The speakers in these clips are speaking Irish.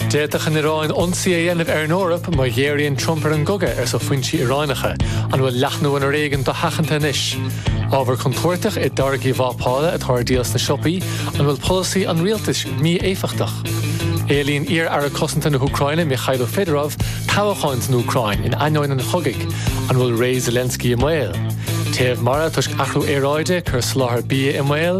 D'fhéadfadh an Iaráin ionsaí a dhéanamh ar an Eoraip má ghéaraíonn Trump ar an gcogadh, arsa foinsí Iaráineacha. An bhfuil leathnú an fhoréigin dosheachanta anois? Ábhar contúirteach i dtáirgí vápála atá ar díol sna siopaí, an bhfuil polasaí an rialtais mí-éifeachtach? Éilíonn iar-aire cosanta na hÚcráine Mykhailo Fedorov toghcháin san Úcráin in ainneoin an chogaidh, an bhfuil ré Zelensky i mbaol? Téamh mara toisc athrú aeráide ag cur soláthar bia i mbaol,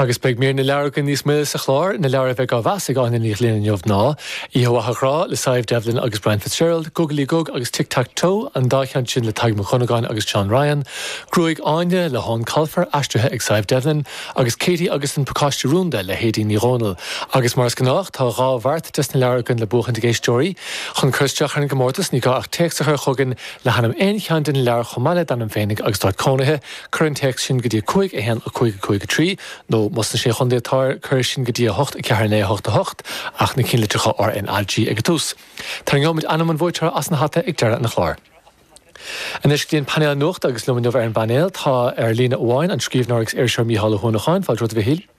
Agus beidh mír na leabhar againn níos moille sa chlár. Na leabhair a bheidh á meas ag Áine Ní Ghlinn inniu ná, Oíche Mhaith a Ghrá le Sadhbh Devlin agus Brian Fitzgerald, Gugalaí Gug agus Tic Tac Toe, an dá cheann sin le Tadhg Mac Dhonnagáin agus John Ryan, Gruaig Áine le hEoin Colfer, aistrithe ag Sadhbh Devlin, agus Katie agus an Pacáiste Rúnda le hAedín Ní Dhomhnaill. Agus mar is gnách tá dhá bheart des na leabhair againn le buachaint ag éisteoirí. Chun cur isteach ar an gcomórtas ní gá ach téacs a chur chugainn le hainm aon cheann de na leabhair chomh maith le d'ainm féinig agus d'áit cónaithe. Cuir an téacs sin go dtí 5 1 5 5 3 nó, más sna Sé Chontae atá air, cuir é sin go dtí 8 4 9 8 8, ach na cinnlitreacha R, N, A, G ag an tús. Tarraingeoimid ainm an bhuaiteora as an hata ag deireadh an chláir. Anois go dtí an painéal nuachta agus liom inniu ar an bpainéal tá, ar líne amháin, an scríbhneoir agus iriseoir Mícheál Ó hUanacháin. Fáilte romhat, a Mhichíl.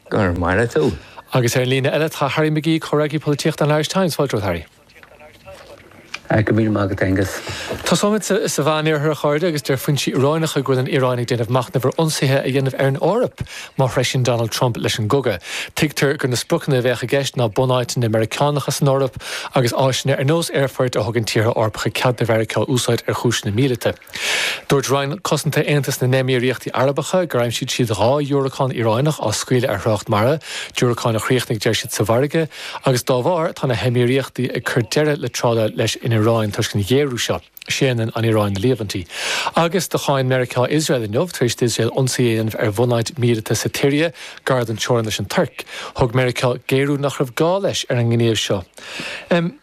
Go raibh maith agat. Agus ar an líne eile tá Harry McGee, Comhfhreagraí Polaitíochta an Irish Times. Fáilte romhat, Harry. Go raibh míle maith agat, Aengus. Tosóimid sa Mheánoirthear, a chairde, agus deir foinsí Iaráinacha go bhfuil an Iaráin ag déanamh machnaimh ar ionsaithe a dhéanamh ar an Eoraip má threisíonn Donald Trump leis an gcogadh. Tuigtear gur na spriocanna a bheadh i gceist ná bunáiteanna Meiriceánacha san Eoraip agus áiseanna ar nós aerfoirt a thugann tíortha Eorpacha cead do Mheiriceá a úsáid ar chúiseanna míleata. Dúirt Roinn Cosanta Aontas na nÉimíríochtaí Arabacha gur aimsigh siad dhá dhiúracán Iaráineach á scaoileadh ar thrácht mara, diúracáin a chríochnaigh deir siad sa bhfarraige, agus dá bharr tá na hEimíríochtaí ag cur deireadh le trádáil leis an Iaráin toisc an ghéaraithe seo. Séanann an Iaráin na líomhaintí. Agus do cháin Meiriceá Iosrael inniu tar éis d'Iosrael ionsaí a dhéanamh ar bhunáit míleata sa tSiria gar don teorainn leis an Tuirc. Thug Meiriceá géarú nach raibh gá leis ar an ngníomh seo.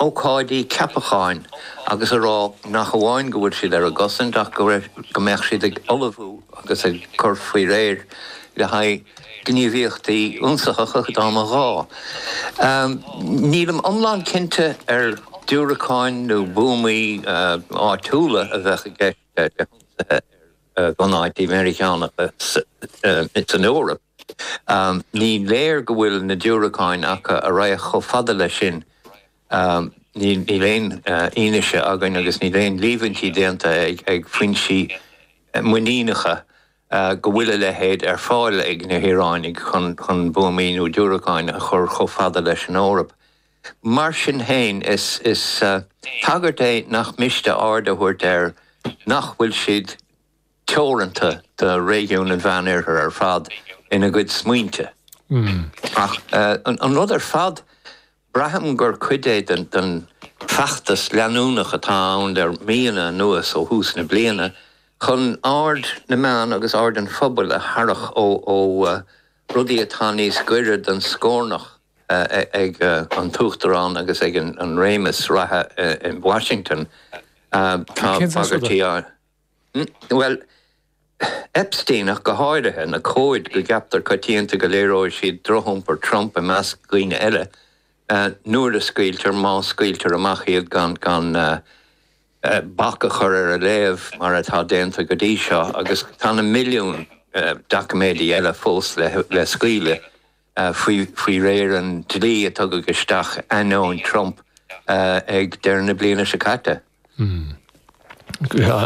ócáidí ceapacháin agus a rá nach amháin go bhfuil siad ar a gcosaint ach go mbeadh siad ag ullmhú agus ag cur faoi réir le haghaidh gníomhaíochtaí ionsaitheacha dá mba ghá. Nílim iomlán cinnte ar diúracáin nó buamaí áitiúla a bheadh i gceist le hionsaithe ar bhunáití Meiriceánacha san Eoraip. Ní léir go bhfuil na diúracáin acu a raghadh chomh fada leis sin. Níl aon fhianaise againn agus níl aon líomhaintí déanta ag foinsí muiníneacha go bhfuil a leithéid ar fáil ag na hIaránaigh chun buamaí nó diúracáin a chur chomh fada leis an Eoraip. Mar sin féin, is bagairt é nach miste aird a thabhairt air nach bhfuil siad. teoranta do réigiún an Mheánoirthir ar fad ina gcuid smaointe. Ach an rud ar fad, braithim gur cuid é den feachtas leanúnach atá ann le míonna anuas, ó thús na bliana, chun aird na meán agus aird an phobail a tharrac ó rudaí atá níos gaire don scornach ag an tUachtarán agus ag an réimeas reatha in Washington. Tá bagairtí á. Bhuel, Epstein ach go háirithe, na comhaid go gceaptar coitianta go léireodh siad drochiompar Trump i measc daoine eile, nuair a scaoiltear, má scaoiltear amach iad gan bac a chur ar a léamh mar atá déanta go dtí seo, agus tá na milliúin doiciméidí eile fós le scaoileadh. faoi réir an dlí a tugadh isteach ainneoin Trump ag deireadh na bliana seo caite.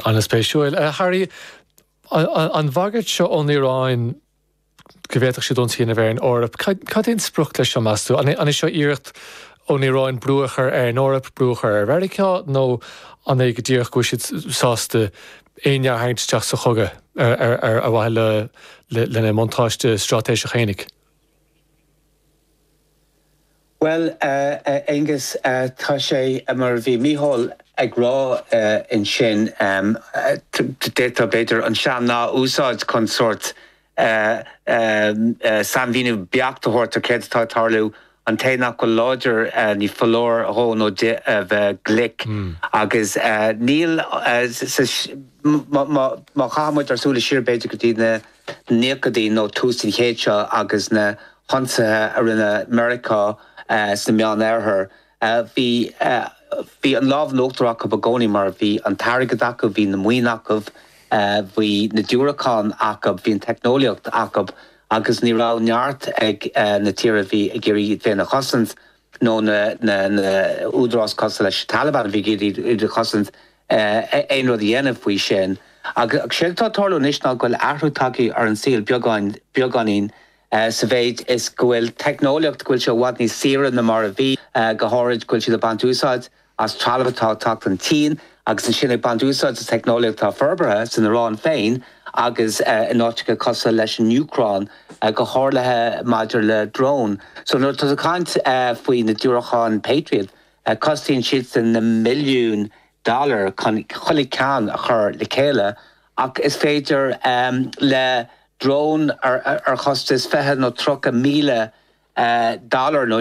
An-spéisiúil. Harry, an bhagairt seo ón Iaráin go bhféadfadh siad ionsaí a dhéanamh ar an Eoraip, cad é an sprioc leis seo, meas tú? An é seo iarracht ón Iaráin brú a chur ar an Eoraip, brú a chur ar Mheiriceá, nó an é go díreach go bhfuil siad sásta éinne a tharraingt isteach sa chogadh ar mhaithe lena mbuntáiste straitéiseach fhéinig? Bhuel, Aonghus, tá sé mar a bhí Micheál ag rá ansin, d'fhéadfá, b'fhéidir, an sean-nath a úsáid chun sórt a sainmhíniú beacht a thabhairt ar céard atá ag tarlú. An té nach bhfuil láidir ní foláir dhó nó di a bheith glic agus níl sa, má chaithfidh muid ár súile siar b'fhéidir go dtí na naochaidí nó tús an chéid seo agus na hionsaithe a rinne Meiriceá sa Meánoirthear, Bhí an lámh in uachtar acub i gcónaí mar bhí an t-airgead acub, bhí na maoin acub, bhí na diúracáin acub, bhí an teicneolaíocht acub agus ní raibh neart ag na tíortha a bhí ag iarraidh iad féin a chosaint nó na húdaráis cosúil leis an Taliban a bhí ag iarraidh iad a chosaint aon rud a dhéanamh faoi sin. Agus séard atá ag tarlú anois ná go bhfuil athrú tagtha ar an saol beagáinín. Sa mhéid is go bhfuil teicneolaíocht, go bhfuil sé i bhfad níos saoire ná mar a bhí, go háirid go bhfuil siad ag baint úsáid as trealamh atá ag teacht ón tSín agus ansin ag baint úsáid as teicneolaíocht atá forbartha san Iaráin féin agus in áiteacha cosúil leis an Úcráin, go háirithe maidir le drón. So nuair atá tú ag caint faoi na diúracáin Patriot, costaíonn siadsan na milliúin dollar chun chuile cheann a chur le chéile ach is féidir le drón ar chostas fiche nó tríocha míle dollar nó.